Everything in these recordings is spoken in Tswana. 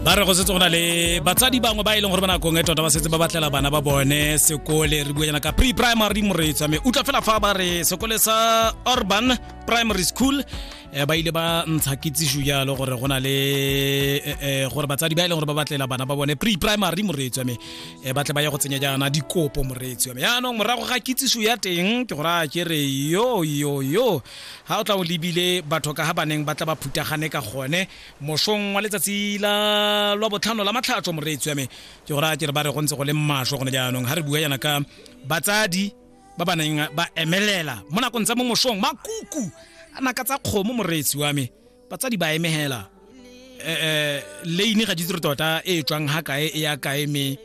ba re go setse go na le batsadi bangwe ba e leng gore ba nakong e tota ba setse ba batlela bana ba bone sekole re bua jana ka pre primary moreetswa me utlwa fela fa ba re sekole sa urban primary school eh, ba ile ba ntsha kitsiso jalo gore go na le eh, eh, gore batsadi ba e leng gore ba batlela bana ba bone pre primary moreetswa me ba tle ba ye go tsenya jaana dikopo moreetswa me yaanong morago ga kitsiso ya teng ke gore a ke re yo yo yo ga o tla o lebile batho ka ga baneng ba tla ba phutagane ka gone mosong wa letsatsi la lwa botlhano la matlhatso moreetsi wa me ke gore a ke re ba re go ntse go le mmasho gone jaanong ga re bua yana ka batsadi ba ba neng ba emelela mo nakong tsa mo mosong makuku a naka tsa kgomo moreetsi wa me batsadi ba emegela um leine ga ditse re tota e e tswang ga kae e ya kae me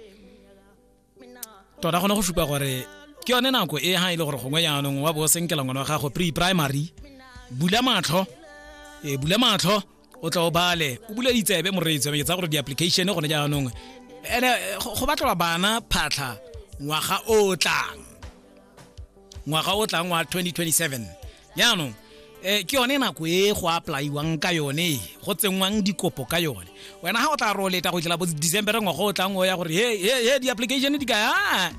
tota gone go supa gore ke yone nako e ha e le gore gongwe jaanong wa bo o senkela ngwana wa gago pre primary bula matlho e bula matlho o tla o bale o bula ditsebe moreetsi ke tsa gore di-application gone jaanong ene go batlelwa bana phatlha ngwaga o tlang ngwaga o tlang wa 2027 jaanong um ke yone nako e go applaiwang ka yone e go tsenngwang dikopo ka yone wena ga o tla roleta go tlela bo december ngwaga o tlang o ya gore he di-application di kaya ah,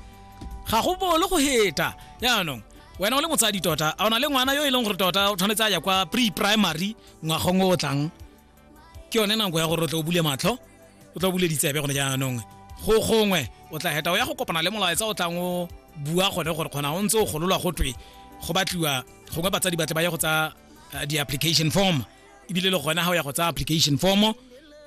ga go bolo go heta jaanong wena o le motsadi tota a o na le ngwana yo e leng gore tota o tshwanetse a ya kwa pre primary ngwagong o tlang ke yone nako ya gore o tle o bule matlho o tla bule ditsebe gone jaanong go gongwe o tla heta o ya go kopana le molaetsa o tlang o bua gone gore kgona o ntse o gololwa go twe go batliwa gongwe batsadi batle ba ye go tsa eh, di-application form ebile le gone ga o ya go tsa application form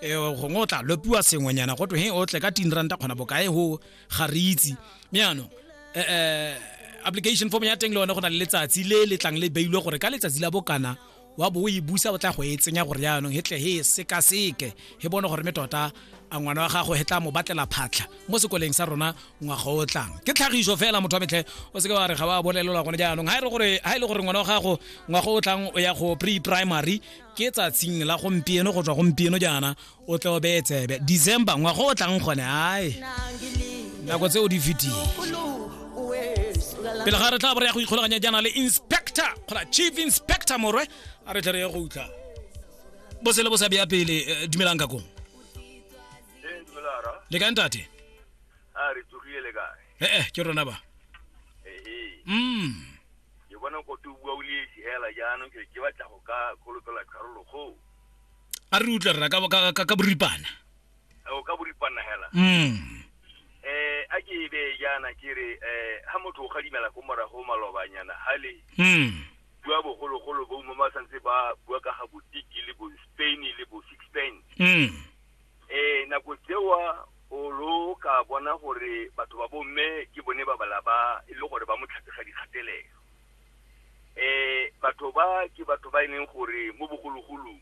eh, gongwe o tla lopiwa sengwenyana go twe he o tle ka tin ranta kgona bokae go ga re itse mme yaanong eh, eh, application form ya teng le one go na le letsatsi le le tlang le beilwe gore ka letsatsi la bokana wa bo o e busa o tla go e tsenya gore jaanong hetle he e sekaseke he bone gore me tota a ngwana wa gago he tla mo batlela phatlha mo sekoleng sa rona ngwaga o tlang ke tlhagiso fela motho wa metlhe o seke wa re ga wa bolelelwa gone jaanong ga e le gore ngwana wa gago ngwaga o tlang o ya go pre primary ke tsatsing la gompieno go tswa gompieno jaana o tle o beye tsebe december ngwaga o tlang gone ae nako tse o di fetile pele ga re tla bo re ya go ikgolaganya jaana le inspector kgona chief inspector morwe a re tle re ye go utlwa bo se le bo sa beya pele eh, dumelang ka kong le kae ntate a re tsogile le kae ee ke rona ba ee mm ke bona kote o bua o le esi hela jaanong ke ke batla go ka kgolopela karolo go a re utlwe rra ka- ka- ka- ka boripana o ka boripana hela mm eh a ke be yana ke re eh ha motho o gadimela ko morago malobanyana hale mm bua bogologolo bo mo ba santse ba bua ka ga botiki le bo spain le bo six spain mm eh nako tsewa o lo ka bona gore batho ba bomme ke bone ba bala ba e le gore ba mo tlhatsega dikgatelelo eh batho ba ke batho ba e leng gore mo bogologolong